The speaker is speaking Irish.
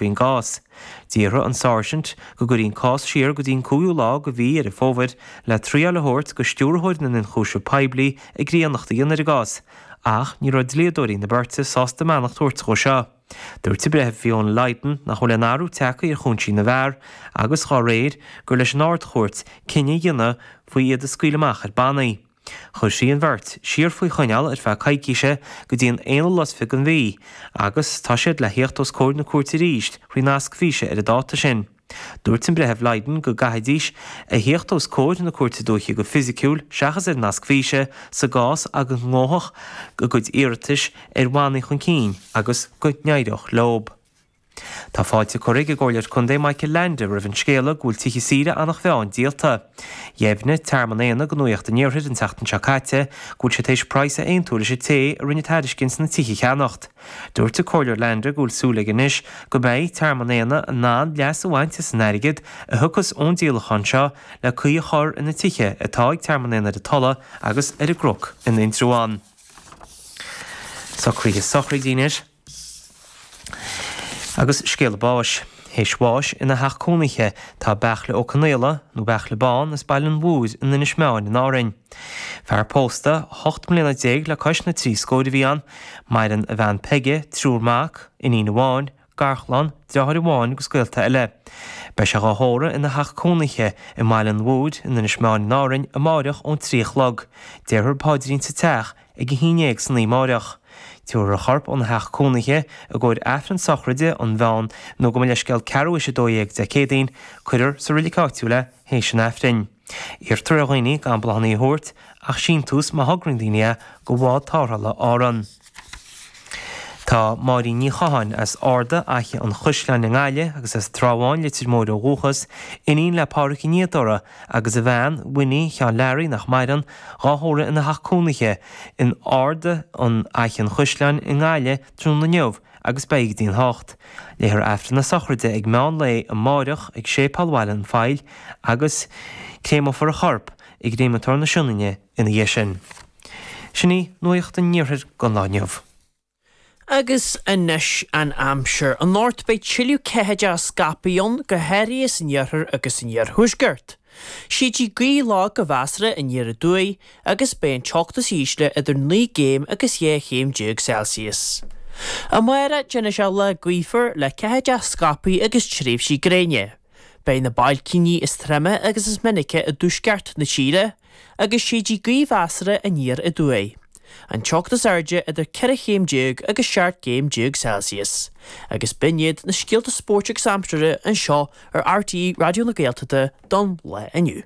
faoin gcás. D'iarr an Sáirsint go gcuirfí an cás siar go dtí an cúiú lá go mhí Dheireadh Fómhair le traíáil a thabhairt go Stiúrthóir na nIonchúiseamh Poiblí i gcríonnacht a dhéanamh ar an gcás ach ní raibh dlíodóirí na beirte sásta a mbeannacht a thabhairt dhó seo. Dúirt an Breitheamh Fiona Lydon nach bhfuil aon athrú tagtha ar chúinsí na bhfear agus, dhá réir, gur leis an Ard-Chúirt cinneadh a dhéanamh faoi iad a scaoileadh amach ar bannaí. Chuir sí an bheirt siar faoi choinneáil ar feadh coicíse go dtí an aonú lá fichead den mhí agus tá siad le theacht os comhair na cúirte arís faoi nasc físe ar an dáta sin. Dúirt an Breitheamh Lydon go gcaithfidís a theacht os comhair na Cúirte Dúiche go fisiciúil seachas ar nasc físe sa gcás go ngabhfadh a gcuid iarratais ar bhannaí chun cinn agus go n-éireodh leo. Tá fáilte curtha ag an gComhairleoir Contae Michael Leainde roimh an scéala go bhfuil tithe saoire Eanach Mheáin díolta. Dheimhnigh Tearmann Éanna go Nuacht an Iarthair an tseachtain seo caite go bhfuil siad tar éis praghas a aontú leis an té a rinne tairiscint na tithe a cheannacht. Dúirt an Comhairleoir Leainde go bhfuil súil aige anois go mbeidh Tearmann Éanna in ann leas a bhaint as an airgead a thiocfas ón díolachán seo le caoi a chur ar na tithe atá ag Tearmann Éanna ar an Tulaigh agus ar an gCnoc in Indreabhán. Socruithe sochraide anois. Agus scéala báis. Théis bháis ina theach cónaithe, tá Beairtle Ó Conaola, nó Beairtle Bán, as Baile an Mhothair in Inis Meáin in Árainn. Fear pósta, hocht mbliana déag le cois na trí scóir a bhí ann, maireann a bhean Peige, triúr mac, iníon amháin, garchlann, deartháir amháin agus gaolta eile. Beidh sé dhá thórramh ina theach cónaithe i mBaile an Mhothair in Inis Meáin in Árainn amáireach ón trí a chlog. Déarfar paidrín sa teach ag a haon déag san oíche amáireach. Tiúrfar a chorp óna theach cónaithe i gcomhair Aifreann Sochraide, An Mheán, nó gabh mo leithscéal ceathrú théis a Dó Dhéag Dé Céadaoin, cuirfear sa roilig áitiúil é théis an Aifrinn. Iarrtar ar dhaoine gan bláthanna a thabhairt, ach síntiús má thograíonn daoine é go bhád tarrthála Árann. Tá Máirín Ní Chatháin, as Arda Fhaiche an Chaisleáin i nGaillimh agus as Trá Bháin, Leitir Móir ó dhúchas, iníon le Pádraic an Fhíodóra, agus a bhean, Winnie, Sheáin Learaí, nach maireann, dhá thórramh ina theach cónaithe in Arda Fhaiche an Chaisleáin i nGaillimh tráthnóna inniu agus beidh go dtí an hocht. Léifear Aifreann na Sochraide ag meán lae amáireach ag Séipéal Bhaile an Phoill agus créamófar a chorp i gcréamatóir na Sionainne ina dhiaidh sin. Sin í nuaíocht an iarthair gon lá inniu. Agus anois an aimsir. Anocht beidh tuilleadh ceathaideacha scaipthe ann, go háirithe san iarthar agus san iarthuaisceart. Séidfidh gaoth lag go measartha aniar aduaidh agus beidh an teocht is ísle idir naoi gcéim agus dhá chéim déag Celsius. Amárach, Déanfaidh sé lá gaofar le ceathaideacha scaipthe agus tréimhsí gréine. Beidh na bailcíní is troime agus is minice i dtuaisceart na tíre, agus séidfidh gaoth mheasartha aniar aduaidh. An teocht is airde idir 14 chéim agus 17 gcéim Celsius. Agus b'in iad na scéalta spóirt agus aimsire anseo ar RTÉ Raidió na Gaeltachta don lá inniu.